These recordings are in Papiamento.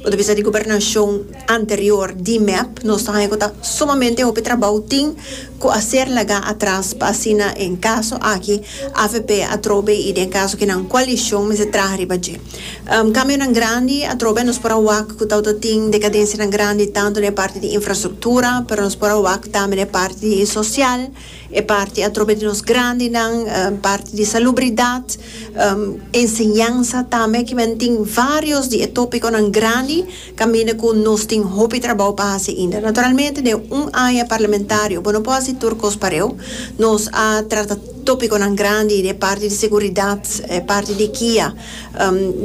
Bo ta bisa di gobernashon anterior di mep, nos ta haña ku ta sumamente hopi trabou tin ku a ser lagá atras pa asina en kaso aki avp atrobe i den kaso ku nan koalishon mester traha riba dje. Kambionan grandi atrobe nos por a wak ku ta ota tin dekadensianan grandi tantu den e parti di infrastruktura, pero nos por a wak tambe den e parti di e sosial, E parti atrobe di nos grandinan, parti di salubridat, enseñansa tambe ki men tin varios di e tópikonan grandi kaminda ku nos tin hopi trabou pa hasi ainda. Naturalmente den un aña parlamentario bo no por hasi tur kos pareu. Nos a trata tópikonan grandi den e parti di seguridat, e parti di kia,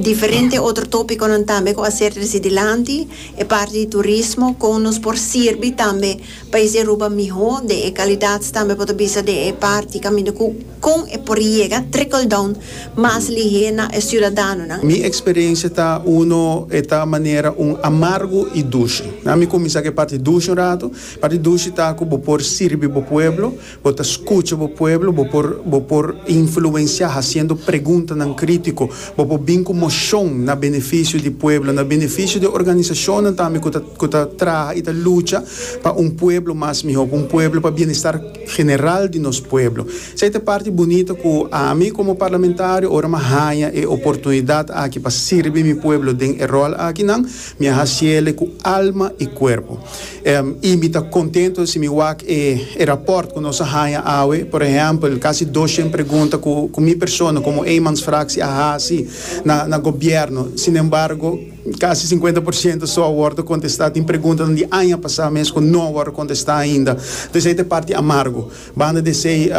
diferente otro tópikonan tambe ku a ser trese dilanti, e parti di turismo kon nos por sirbi tambe Pais di Aruba mihó den e kalidat tambe bo ta bisa den e parti kaminda ku kon e por yega trickle down mas lihé na e siudadanonan. Mi eksperensia ta uno e ta manera un amargu i dushi. Mi kuminsá ku e parti dushi un ratu. Parti dushi ta ku bo por sirbi bo pueblo. Bo ta skucha bo pueblo, bo por bo por influensiá hasiendo preguntanan krítiko, bo por bin ku moshon na benefisio di pueblo, na benefisio di organisashonnan tambe ku ta ku ta traha i ta lucha pa un pueblo mas mihó, pa un pueblo pa bienestar general di nos pueblo. Esei ta e parti bunita ku ami komo parlamentario ora mi a haña e oportunidat aki pa sirbi mi pueblo den e ròl akinan, Mi a hasiele ku alma i kuerpo. Em, i mi ta kontento si mi wak e e rapòrt ku nos a haña awe. Por ehèmpel, kasi doshen pregunta ku ku mi persona komo eenmansfraksie a hasi na na gobièrnu. Sinembargo, kasi sinkuenta por siento so a wòrdu kontestá. Tin preguntanan di aña pasá mes ku no a wòrdu kontestá ainda. Entonces, ei ta e parti amargu. Banda di esei,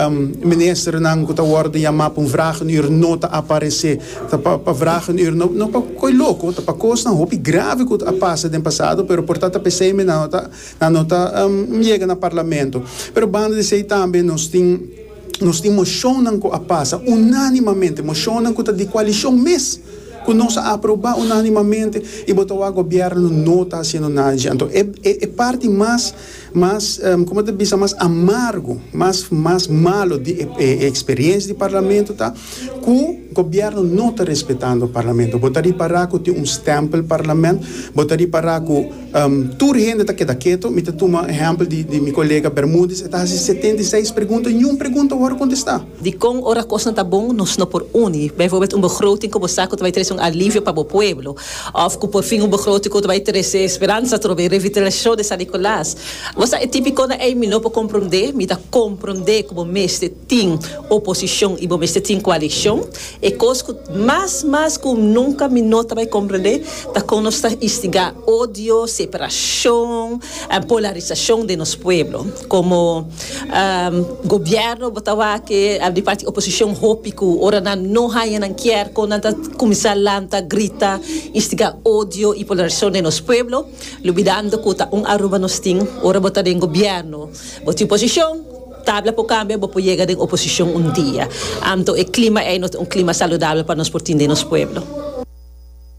ministernan ku ta wòrdu yamá pa un vragenuur no ta aparesé. Ta pa pa vragenuur, no no pa ko'i loko, ta pa kosnan hopi grave ku a pasa den pasado, pero por ta ta p'esei mi nan no ta nan no ta yega na parlamento. Pero banda di esei tambe nos tin nos tin moshonnan ku a pasa unánimamente, moshonnan ku ta di koalishon mes ku nos a aprobá unánimamente i bo ta wak gobièrnu no ta hasiendo nada di shi. Anto e e parti mas Mas, como ta bisa, mas amargo, mas, mas malo di e, e, e experiencia di Parlamento ta cu Gobierno no ta respetando Parlamento. Bo ta ripara cu tin un stempel Parlament, bo ta ripara cu tur hende ta keda keto. Mi ta tuma ehempel di, di mi colega Bermudez, e ta haci setenta i seis pregunta, niun pregunta a wor contesta. Dikon ora kosnan ta bon nos no por uni, bijvoorbeeld un begroting ku bo sa ku ta bai trese un alivio pa bo pueblo òf ku porfin un begroting ku ta bai trese speransa atrobe revitalisashon di San Nikolaas? Bo sa e tipikonan ei mi no por komprondé, mi ta komprondé ku bo mester tin oposishon i bo mester tin koalishon. E kos ku mas mas ku nunka mi no ta bai komprondé ta kon nos ta instigá odio, separashon, polarisashon den nos pueblo. Komo gobièrnu bo ta wak-e di parti oposishon hopi ku ora nan no haña nan kier kon nan ta kuminsá lanta, grita, instigá odio i polarisashon den nos pueblo, lubidando ku ta un Aruba nos tin. Ora bo ta den gobièrnu, bo tin posishon, tabla por kambia, bo por yega den oposishon un dia. Anto e klima ei no ta un klima saludabel pa nos por tin den nos pueblo.